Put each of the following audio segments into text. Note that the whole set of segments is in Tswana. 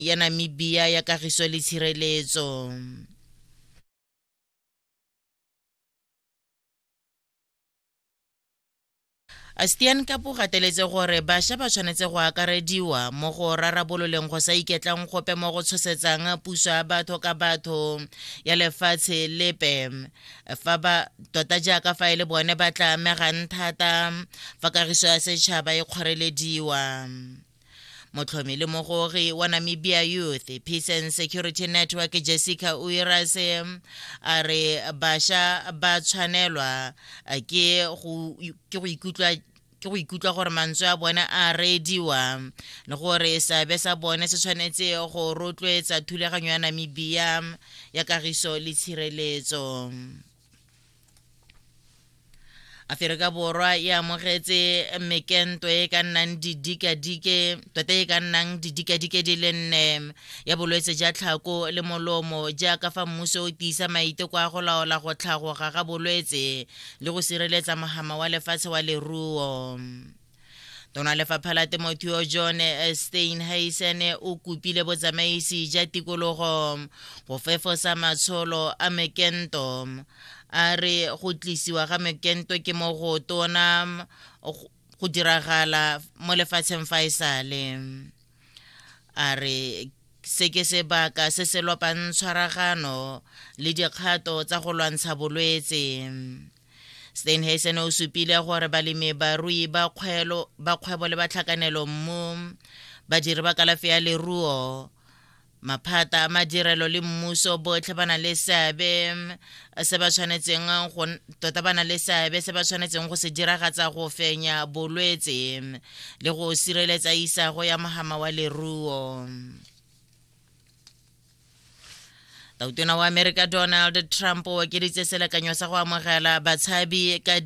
ya Namibia ya Kagiso le Tshireletso. Astian Kapu gateletse gore bašwa ba tshwanetse go akarediwa mo go rarabololeng go sa iketlang gope mo go tshosetsang puso ya batho ka batho ya lefatshe lepe fa ba tota jaaka fa e le bone ba tla amegang thata fa kagiso ya setšhaba e kgorelediwa motlhomi le mogogi wa namibia youth peace and security network jessica uirase a re basha ba tshwanelwa ke go ikutlwa ke go ikutlwa gore mantswe a bone a reediwa le gore seabe sa bone se tshwanetse go rotloetsa thulaganyo ya namibia ya kagiso le tshireletso aferika borwa e amogetse mekento e ka nnang didikadike tota e ka nnang didikadike di le nne ya bolwetse ja tlhako le molomo jaaka fa mmuso o tiisa maiteko a go laola go tlhagoga ga bolwetse le go sireletsa mogama wa lefatshe wa leruo tona lefapha la temothuo john eh, steinheisen eh, o kopile botsamaisi ja tikologo go fefosa matsholo a mekento a re go tlisiwa ga mekento ke mo go tona go diragala mo lefatsheng fa e sale a re se ke sebaka se se lopang tshwaragano le dikgato tsa go lwantsha bolwetse steinhasen o supile gore balemi barui ba kgwebo le batlhakanelo mo badiri ba kalafi ya leruo maphata a madirelo le mmuso botlhe ba na le seabe se ba tshwanetseng go tota ba na le seabe se ba tshwanetseng go se diragatsa go fenya bolwetse le go sireletsa isago ya mogama wa leruo tautona wa amerika donald trump o okeditse selekanyo sa go amogela batshabi ka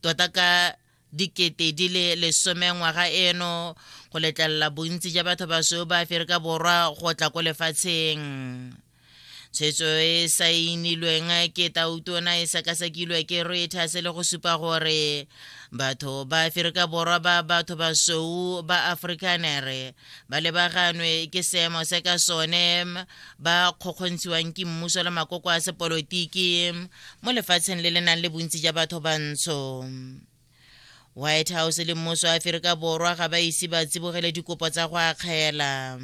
tota ka dikete di le lesome ngwaga eno go letlelela bontsi ja batho basweu ba aferika borwa go tla ko lefatsheng tshwetso e saenilweng ke tautona e sekasekilwe ke reuters le go supa gore batho ba aferika borwa ba batho basweu ba afrikanere ba lebaganwe ke seemo se ka sone ba kgokgontshiwang ke mmuso le makoko a sepolotiki mo lefatsheng le le nang le bontsi ja batho bantsho white house le mmuso wa aferika borwa ga ba ise ba tsibogele dikopo tsa go akgela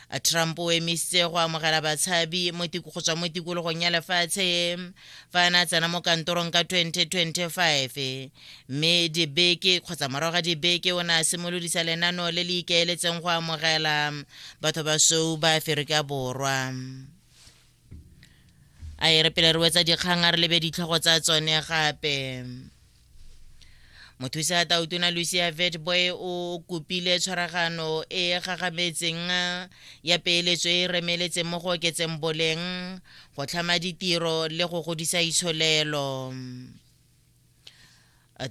a trump o emisitse go amogela batshabi go tswa mo tikologong ya lefatshe fa a ne a tsena mo kantorong ka 2025 mme dibeke kgotsa morago ga dibeke o ne a simolodisa lenano le le ikaeletseng go amogela batho ba sou ba aferika borwa a e re pele re wetsa dikgang a re lebe ditlhogo tsa tsone gape mothusa tautona lucia vetboy o kopile tshwaragano e e gagametseng ya peeletso e e remeletseng mo go oketseng boleng go tlhama ditiro le go godisa itsholelo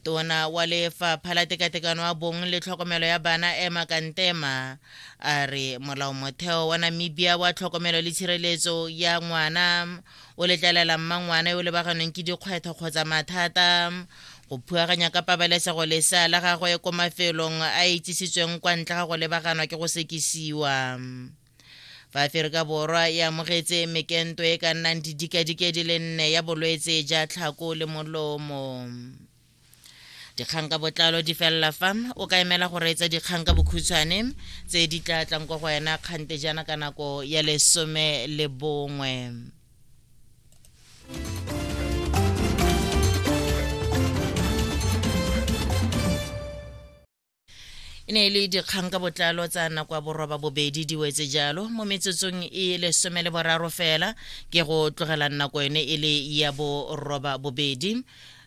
tona wa lefapha la tekatekano ya bong le tlhokomelo ya bana ema kantema a re molao motheo wa namibia wa tlhokomelo le tshireletso ya ngwana o letlelela mmangwana yo o lebaganeng ke dikgwetlho kgotsa mathata go phuaganya ka pabalesego lesea la gagwe ko mafelong a itsisitsweng kwa ntle ga go lebaganwa ke go sekisiwa Fa Aferika Borwa e amogetse mekento e ka nnang didikadike di le nne ya bolwetse ja tlhako le molomo. Dikgang ka botlalo di felela fa o ka emela go reetsa dikgang ka bokhutshwane tse di tla tlang kwa go wena kgante jaana ka nako ya lesome le bongwe. e ne e le dikgang ka botlalo tsa nako ya boroba bobedi di wetse jalo mo metsotsong e lesome le boraro fela ke go tlogela nako yone e le ya boroba bobedi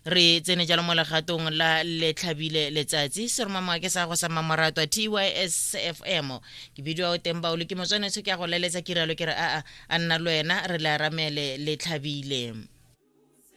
re tsene jalo mo legatong la letlhabile letsatsi seromamwa ke sa go sa mamoratwa tysfm ke bidio o teng baolo ke motswanetsho ke ya go leletsa kiralo ke re aa a nna le wena re le aramele letlhabile